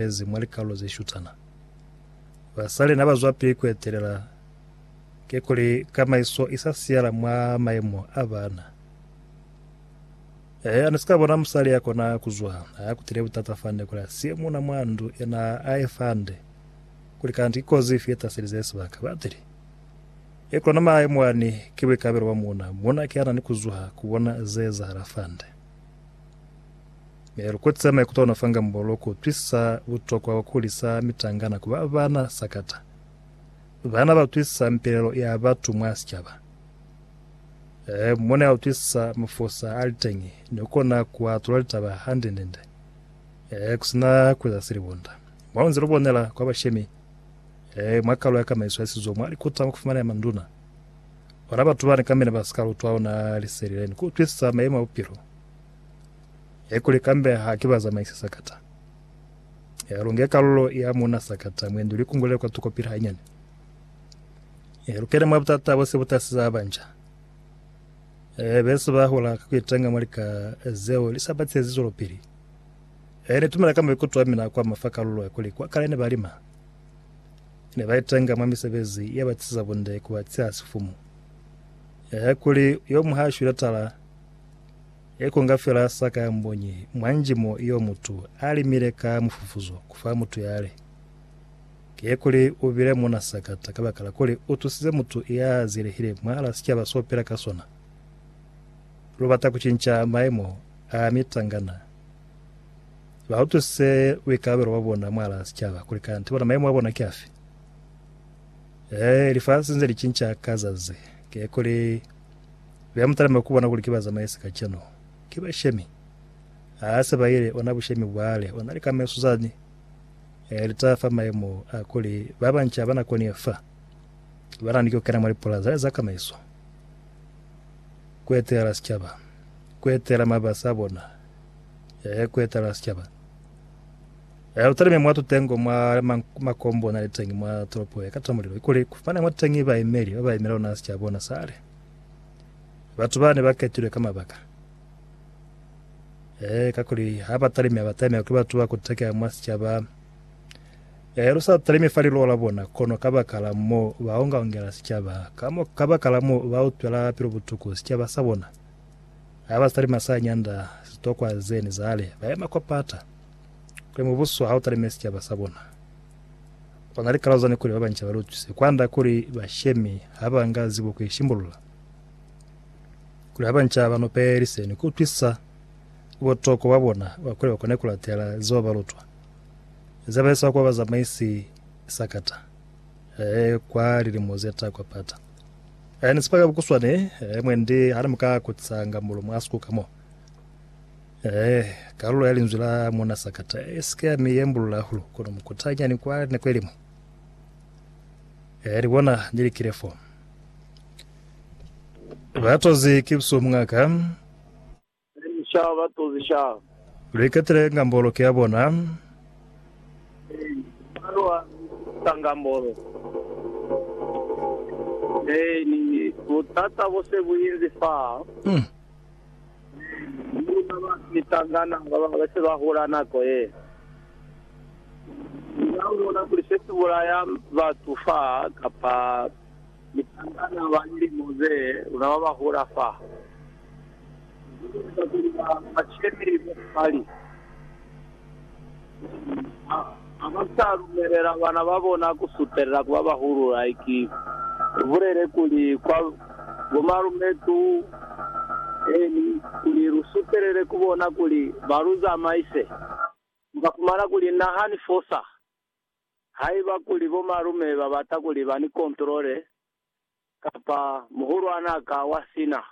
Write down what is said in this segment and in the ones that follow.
Lezi mwa likalolo ze shutana. Basali na ba zwapili ku etelela, kikuli kamaiso i sa siyala mwa mayemo a bana. Ee, ani si ka bona musali ya kona ku zwa, ha ya kutile butata fande kuli a siye muuna mwa ndu, yena a e fande. Kuli kanti ki kozi ifi ye taselize sibaka? Batili. Ye kona mayemo ani ki buikalabelo bwa muuna. Muuna ki ya na ni ku zuha ku bona ze ezahala fande. Mi lu kotisa maikuto ona fanga mbolo ku utwisisa butokwa bwa ku hulisa mitangana ku ba bana sakata. Bana ba utwisisa mipelelo ya batu mwa sicaba. Ee, mone ba utwisisa mafosa a li teñi ni ku kona ku atula litaba hande-nde-nde, ee, ku si na ku eza silibonda. Mwa nze lu bonela kwa bashemi, ee, mwa kalo ya kamaiso ya sizo, mwa likota mwa ku fumanela manduna, ona batu bani kamina ba si ka lutwa ona liseli le ni ku utwisisa mayemo a bupilo. He kuli kambe ha ki ba zamaisi sakata. He lu nge kalulo ya muuna sakata, mwendi li kungulele kwa tuko pili hanyane. He lu kene mwa butata bo si bu tasiza banja. He be si ba hula ka ku itenga mwa lika zeo li sa ba tiyezi zwelopili. He ni tumela ka maikuto a mina kwa ma fa kalulo ya kuli kwa kale ne ba lima, ne ba itenga mwa misebezi ye ba tisiza bunde ku ba tiya sifumu. He kuli yo muñwi ha shwile tala, He ku nga fela sa ka mbonyi mwa njimo yo mutu a limile ka mufufuzo ku fa mutu yale. Ki kuli u bile muna sakata kabakala kuli u tusize mutu ya zielehile mwahala sicaba so pela ka sona. Lu bata ku cinca maemo a mitangana. Ba utwisise buikalabelo bwa bona mwahala sicaba kuli kanti bona maemo a bona ki afi. Ee, lifasi nze li cinca ka zazi. Ki kuli Bea mutalime kubona kuli ki bazamaisi kacenu. Ki bashemi. Aa se baile, ona bushemi bwale, ona lika meso zani. E lita fa maemo a kuli babanca ba nakoni ye fa, bana ni kukena mwa lipola zale za kamaiso, kuetelela sicaba, kuetelela mabasi abona, e kuetelela sicaba. Lu talime mwa tutengo mwa makombo na li teñi mwa tolopo ye kata mulilo, ikuli ku fane mwa teñi baimeli ba ba imela ona sicaba ona sale. Batu ba ne ba ketilwe ka mabaka. E, kakuli ha ba talime, ba taimela kuli batu ba kutekeha mwa sicaba. E, lu sa talime fa liluho la bona, kono kabakala mo ba onga-ongela sicaba, ka mo, kabakala mo ba utwela pilu butuku sicaba sa bona. Ha ba talima sa nyanda, sitokwa zeni zale, ba yema kwa pata. Kuli mubuso ha u talime sicaba sa bona, u na ni kalalo zani kuli ba banca ba lutwise kwand'a kuli bashemi ha ba nga zibo ku ishimbulula. Kuli ha banca ba nupelise ni ku utwisa butokwa bwa bona bwa kuli ba kone ku latela zeo ba lutwa, ze ba eza kwa bazamaisi sakata, ee, kwa lilimo ze ta kwa pata. Ee, ni ziba ka bukuswani, ee, mwendi ha ni mu ka kutisa nga mulumu a si ku ka mo. Ee, kalulo ya linzwi la Muuna Sakata i si ke ya mi yembulula hahulu, kono mukutanyani kwa nako ilimu. Ee, ni bona, ni likile fo. Batozi ki busuku mungaka. Ee, sha, batozi, sha. Lu iketile ngambolo ki ya bona. Ee, mwa lu alusa ngambolo. Ee, ni butata bo se bu inzi fa. Mm. Mi ba ba sisangana ba ba se ba hula nako ye nde ba bona kuli se si bulaya batu fa, kapa misangana ba lilimo ze luna ba ba hula fa, ba ka eza kuli ba cemi bo fali. Ha, ha ba sa lumelela bana ba bona ku sutelela ku ba bahulu, haiki lu bulele kuli, kwa bomalumetu, eeni, kuli lu sutelele ku bona kuli ba lu zamaise, lu ka fumana kuli na ha ni fosa. Haiba kuli bomalume ba bata kuli ba ni kontrole, kapa muhulwan'a ka wa sina.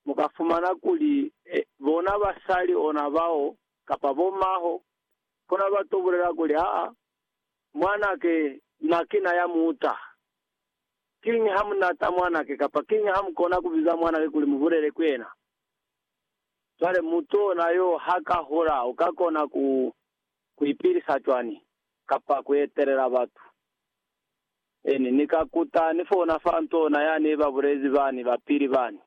Mu ka fumana kuli bona basali ona bao kapa bo maho bona ba to bulela kuli, Aa, mwanake, na ki na ya muta. Kiñi ha mu nata mwanake? Kapa, Kiñi ha mu kona ku biza mwanake kuli mu bulele ku yena? Cwale mutu ona yo ha ka hola, u ka kona ku, ku ipilisa cwani, kapa ku etelela batu? Ni ni ka kuta ni fona fa ntona ya ne ba bulezi bani ba pili bani.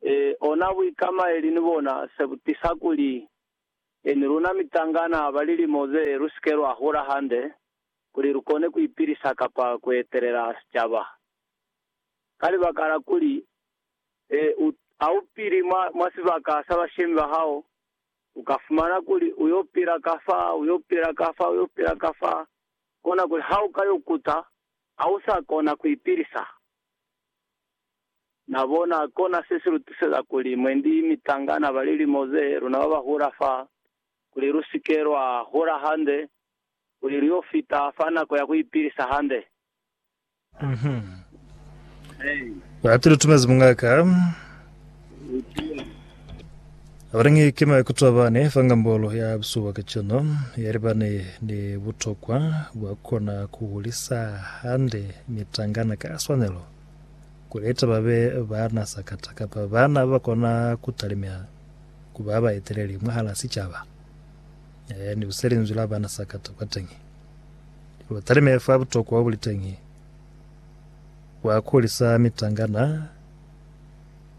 Ee, ona buikamaeli ni bona se bu tisa kuli ni luna mitangana ba lilimo ze lu si ke lwa hula hande kuli lu kone ku ipilisa kapa ku etelela sicaba. Ka libaka la kuli u, ha u pili mwa, mwa sibaka sa bashemi ba hao, u ka fumana kuli u yo pila ka fa, u yo pila ka fa, u yo pila ka fa, Kona kuli ha u ka yo kuta, ha u sa kona ku ipilisa. Na bona, kona se si lu tuseza kuli mwendi mitangana ba lilimo ze, luna ba ba hula fa, kuli lu si ke lwa hula hande, kuli lu yo fita fa nako ya ku ipilisa hande. Batu lutumezi mungaka abalingi kima ikutwa bane fangambolo ya busuba kacano yalibane ni butokwa bwa kona kuhulisa hande mitangana ka swanelo kuleta babe bana sakata kapa bana bakona kutalimela kuba baeteleli mwahala sicaba ni buselinzwi la bana sakata kwateñi. Lutalime fa butokwa obuliteñi bwa kuhulisa mitangana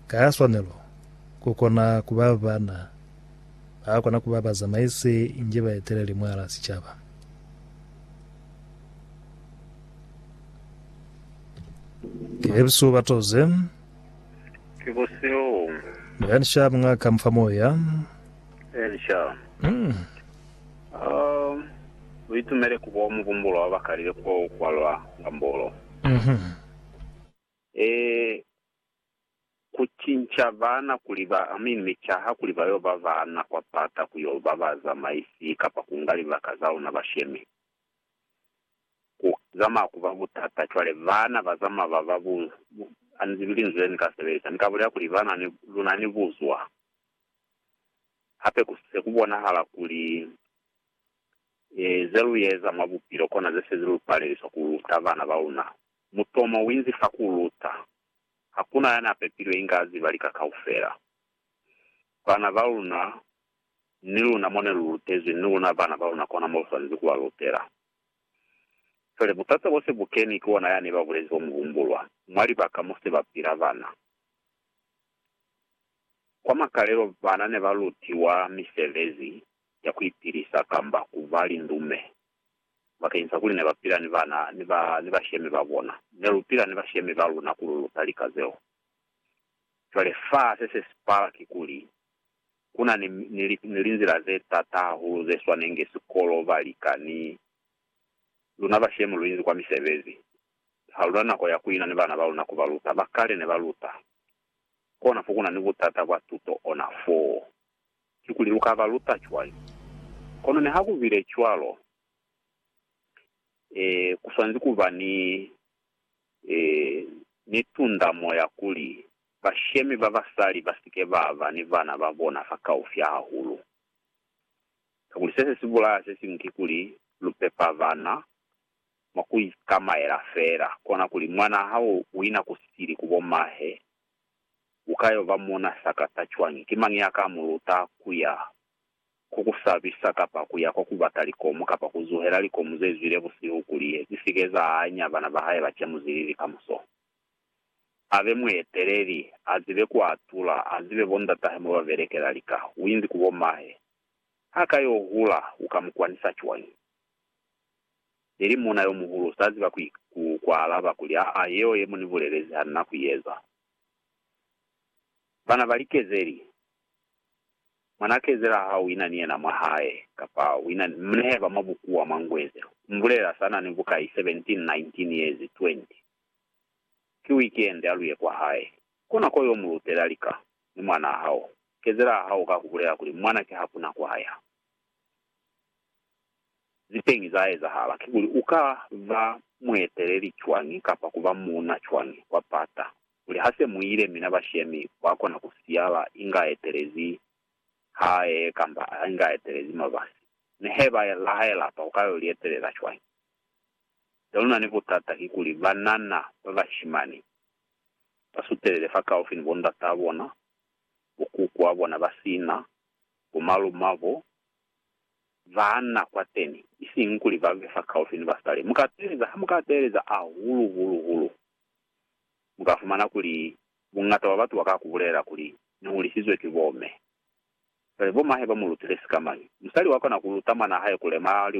ka swanelo kukona kuba bana bakona kuba bazamaisi inge baeteleli mwala sicaba. Kebsu batoze Kiboseo. Elisha mung'a kamufa moya. Elisha. Mm. U itumele ku bo mubumbulo wa bakalile ku bo ukwalwa nga mbolo. E. Ku cinca baana kuli ba aminwi caha kuli ba yo ba baana kwa pata ku yo ba bazamaisi kapa ku nga libaka za luna bashemi ku zamaa ku ba butata. Cwale baana ba zamaa ba ba bu, a ni zibi linzwi le ni ka sebelisa. Ni ka bulela kuli ba na ni, lu na ni buzwa. Hape ku se ku bonahala kuli ze lu eza mwa bupilo kona ze sezi lu paleliswa ku luta bana ba luna. Mutomo u inzi fa ku luta. Ha ku na ya n'a pepilwe inge a ziba lika kaufela. Bana ba luna, ni luna mo ne lu lutezwi, ni luna bana ba luna kona mo lu swanezi ku ba lutela. Cwale, buthata bo se bu keni ki ona yani ba bulezi bo mu humbulwa, mwa libaka mo se ba pila bana. Kwa makalelo bana ne ba lutiwa misebezi ya ku ipilisa kamba ku ba lindume. Bakeñisa kuli ne ba pila ni bana ni ba ni bashemi ba bona, ne lu pila ni bashemi ba luna ku lu luta lika zeo. Cwale fa se se si pala kikuli, ku na ni, ni, ni linzila ze t'ata hahulu ze swanenge sikolo ba lika ni luna bashemi lu inzi kwa misebezi. Ha lu na nako ya ku ina ni bana ba luna ku ba luta. Ba kale ne ba luta Kona fo kuna ni butata bwa tuto ona foo. Kikuli lu ka ba luta cwañi? Kono niha ku bile cwalo, ee, ku swanezi ku ba ni, ee, ni tundamo ya kuli bashemi ba basali ba si ke ba ba ni bana ba bona fakaufi hahulu. Kakuli se se si bulaya se siñwi kikuli lu pepa bana. mwa ku ikamaela fela, kona kuli mwanaa hao uina ku sili ku bo mahe, u ka yo ba muuna sakata cwañi? Ki mañi ya ka mu luta ku ya ku ku sabisa, kapa ku ya kwa ku bata likomu, kapa ku zuhela likomu ze zwile busihu kuli zi si ke za anya bana ba hae ba camuzilili kamuso? A be mueteleli, a zibe ku atula, a zibe bo ndatahe mo ba belekela lika. U inzi ku bo mahe. Ha ka yo hula, u ka mu kwanisa cwañi? Neli muuna yomuhulu, sa ziba ku, ku, ku alaba kuli, Aa, yeo ye mu ni bulelezi ha nina ku i eza. Bana bali, Kezeli, mwanaa kezela ha u ina ni yena mwa hae, kapa u ina ni, mu nehe ba mwa bukuwa mwa Ngweze, u mbulelela sa na ni bukai, 17, 19 yezi, 20. Ki wikende, a lu ye kwa hae. Kona ko yo mu lutela lika, ni mwanaa hao. Kezela ha u ka ku bulela kuli, Mwana ki hakuna kwa ya. Zepeñi za ezahala kikuli u ka ba mueteleli cwañi kapa ku ba muuna cwañi wa pata kuli ha se mu ile mina bashemi wa kona ku siyala inga a etelezi hae kamba inga a etelezi mabasi. Mi he ba laha lapa u ka yo li etelela cwañi? Se lu na ni butata kikuli banana ba bashimani ba sutelele fakaufi ni bondat'a bona, bokuku'a bona ba sina, bomalum'abo, baana kwateni, isiñi kuli babe fakaufi ni basali. Mukateeleza, hamukateeleza ahulu hulu hulu, mukafumana kuli buñata bwa batu baka kubulelela kuli, Nihulisizwe ki bome. Cwale bomahe bamulutile sikamañi? Musali wakona kuluta mwanahae kulema liwa.